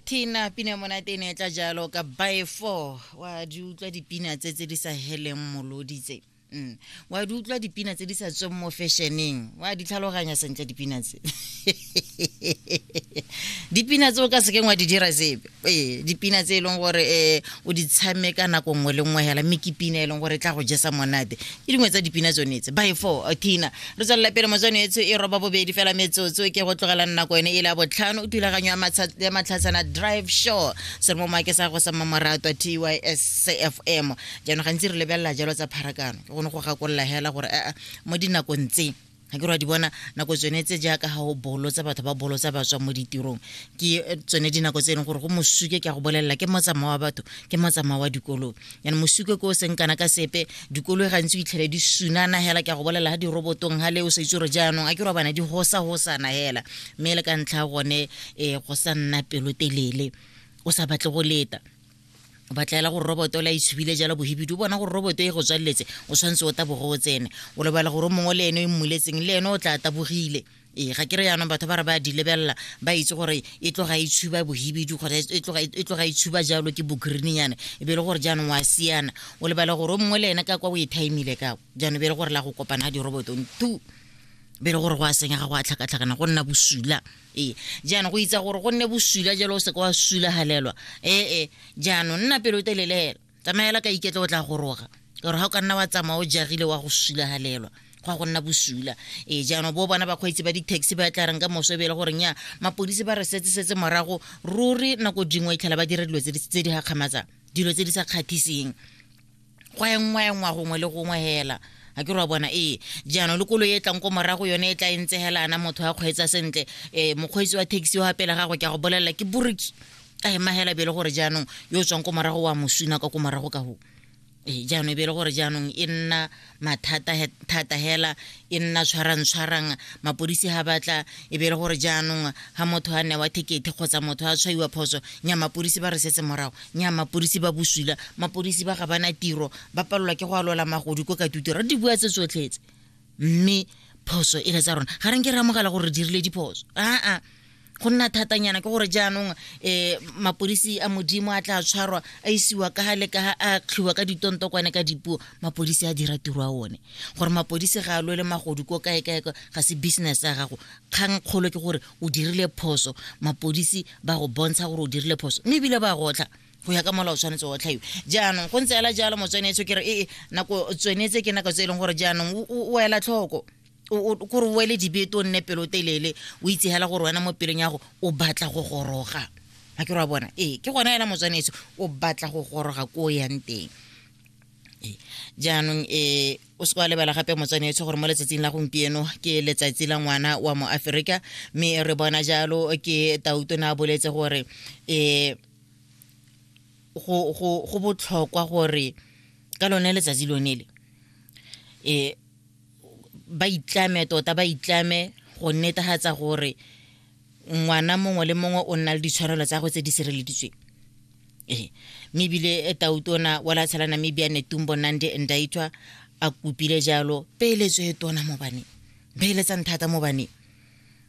tina pina monate e ne e tla jalo ka by four wa di utlwa dipina tse tse di sa heleng molodi tse Mm. wa di utlwa dipina tse di sa tsweng mo fešeneng wa di tlhaloganya sentle dipina tse dipina tse o ka sekeng wa di dira sepe ee dipina tse e leng gore um o di tshameka nako nngwe le nngwe hela mme ke pina e leng gore e tla go jesa monate ke dingwe tsa dipina tsone tse by four tina re tswelela pele motswano etsho e roba bobedi fela metsotso ke go tlogelang nako ene e le ya botlhano o thulaganyo ya matlhatshana drive show se re mo maake sa go sa mmamoratwa t y s c f m jaanong gantsi re lebelela jalo tsa pharakano ke gone go gakolola hela gore aa mo dinakong tse ga ke re wa di bona nako tsone tse jaaka ga o bolotsa batho ba bolotsa ba tswa mo ditirong ke eh, tsone dinako tse e leng gore go mosuke ke a go bolelela ke motsamao wa batho ke motsamao wa dikoloi yana mosuke ko o seng kana ka sepe dikoloi gantsi o itlhele di sunana hela ke a go bolelela ga dirobotong ga le o sa itse gore jaanong a ke re bana di gosa gosana hela mme e le ka ntlha gone um go sa nna pelotelele o sa batle go leta ba tlaela gore roboto la itshubile e jalo bohibidu o bona gore roboto e go tswaleletse o tshwanetse o taboge o tsene o lebala gore o mongwe le ene o e mmuletseng le ene o tla tabogile ee ga ke re jaanong batho ba re ba di lebelela ba itse gore e tloga e tshuba bohibidi kgotsa e tloga e, e, e tshuba jalo ke bogreenyana e be e le gore jaanong wa siana o lebala gore o mongwe le ene ka kwa o e timile ka jaanong e be e le gore la go kopana ga dirobotong tu be e le gore go a senyega go a tlhakatlhakana go nna bosula ee jaanong go itsa gore go nne bosula jalo o seke wa sulagalelwa ee jaanong nna pelo telelela tsamaela ka iketla o tla goroga gore ga o ka nna wa tsamaya o jagile wa go sulagalelwa go ya go nna bosula ee jaanong bo bona bakgweetsi ba di-taxi ba tla reng ka moso e be e le goreng ya mapodisi ba re setsesetse morago ruri nako dingwe e tlhela ba dira dilo tse di gakgamatsang dilo tse di sa kgatheseng go engwaengwa gongwe le gongwe hela a ke ra bona ee jaanong le kolo e tlang ko morago yone e tla e ntse hela ana motho a kgweetsa sentle um mokgweetsi wa taxi wa pele gago ke a go bolelela ke boriki a ema hela bele gore jaanong yo o tswang ko morago wa mosuna ka ko morago ka go ee jaanong e bele gore jaanong e nna mathata thata hela e nna tshwarang-tshwarang mapodisi ga batla e be e le gore jaanong ga motho a newa thekete kgotsa motho a tshwaiwa phoso nya mapodisi ba re setse morago nya mapodisi ba boswila mapodisi ba ga bana tiro ba palelwa ke go alola magodi ko ka tutiro di bua tse tsotlhetse mme phoso e le tsa rona ga re nke re amogela gore re dirile diphoso aa go nna thatanyana ke gore jaanong um mapodisi a modimo a tla tshwarwa a isiwa ka gale ka a tlhiwa ka ditontokwane ka dipuo mapodisi a dira tiro a one gore mapodisi ga a lwele magodu ko kae kae ga se business ya gago kgang kgolo ke gore o dirile phoso mapodisi ba go bontsha gore o dirile phoso mme ebile ba gotlha go ya ka mola o tshwanetse wa tlhaiwa jaanong go ntse ela jalo motswenetso ke re ee nako tswenetse ke nako tse e leng gore jaanong o ela tlhoko kore o ele dibete o nne pelotelele o itse hela gore wena mo pelong ya go o batla go goroga ga ke ra bona ee ke gona hela motswanetso o batla go goroga ko o yang teng jaanong e o se kwa lebala gape motswanetso gore mo letsatsing la gompieno ke letsatsi la ngwana wa mo aferika mme re bona jalo ke tauto ne a boletse gore um go botlhokwa gore ka lone letsatsi lone le um ba itlame tota ba itlame go netegatsa gore ngwana mongwe le mongwe o nna le ditshwanelo tsa go tse di sireleditsweng ee mme ebile e tautona wa latshela namibia netumbo nandi ndaitwa a kopile jalo peeletso e tona mo baneng beeletsang thata mo baneng